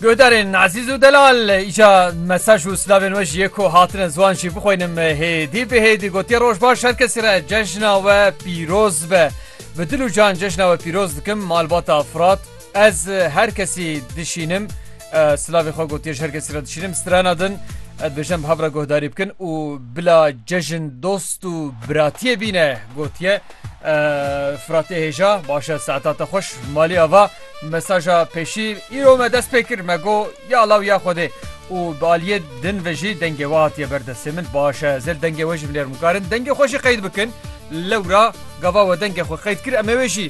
Guhdarên Azîz û Delal îca mesaj û silavên we ji yê ku hatine ziwan jî bixwînim hêdî bi hêdî gotiye roj baş her kesî re cejna we pîroz be bi dil û can cejna we pîroz dikim malbata firat ez her kesî dişînim silavê xwe gotiye ji her kesî re dişînim strana din dibêjin bi hev re guhdarî bikin û bila cejin dost û biratiyê bîne gotiye Firatê hêja başe saeta te xweş malê ava mesaja pêşî îro me dest pê kir me go ya law ya xwedê û bi aliyê din ve jî dengê we hatiye ber destê min başe ez ê dengê we jî bilêrim û karin dengê xwe jî qeyd bikin lewra gava we dengê xwe qeyd kir em ê wê jî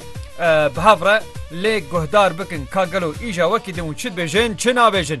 bi hev re lê guhdar bikin ka gelo îja wekî din û çi dibêjin çi nabêjin.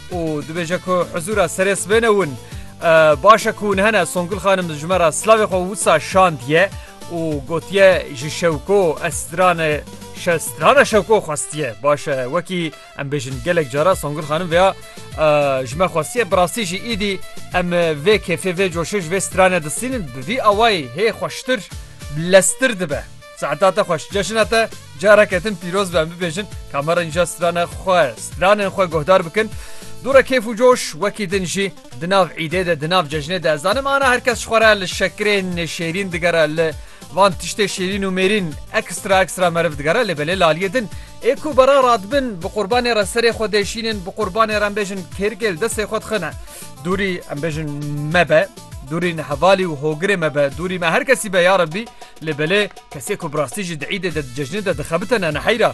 û dibêje ku hizûra serê sibê ne win. Baş e ku hûn hene Songul xanim ji me re silavê xwe wisa şandiye û gotiye ji şewko ez strane strana şewko xwestiye baş e wekî em bêjin gelek cara Songul xanim veya ji me xwestiye bi rastî jî îdî em vê kêfê vê coşê ji vê strane distînin bi vî awayî hê xweştir lestir dibe. Saeta te xweş, ceşina te careke din pîroz be em bibêjin ka me re nîja stranên xwe, stranên xwe guhdar bikin. Dûre kêf û coş wekî din jî di nav îdê de di nav cejnê de ez zanim ana her kes ji xwe re li şekirên şêrîn digere li van tiştê şêrîn û mêrîn ekstra ekstra meriv digere lê belê laliyê din ê ku bera radibin bi qurbanê re serê xwe dê şînin bi qurbanê re em bêjin kêrgêl destê xwe dixine dûrî em bêjin me be. Dûrîn hevalî û hogirê me be, dûrî me her kesî be ya Rebbî, lê belê kesê ku bi rastî jî di îdê de di cejnê de dixebite ne neheyra.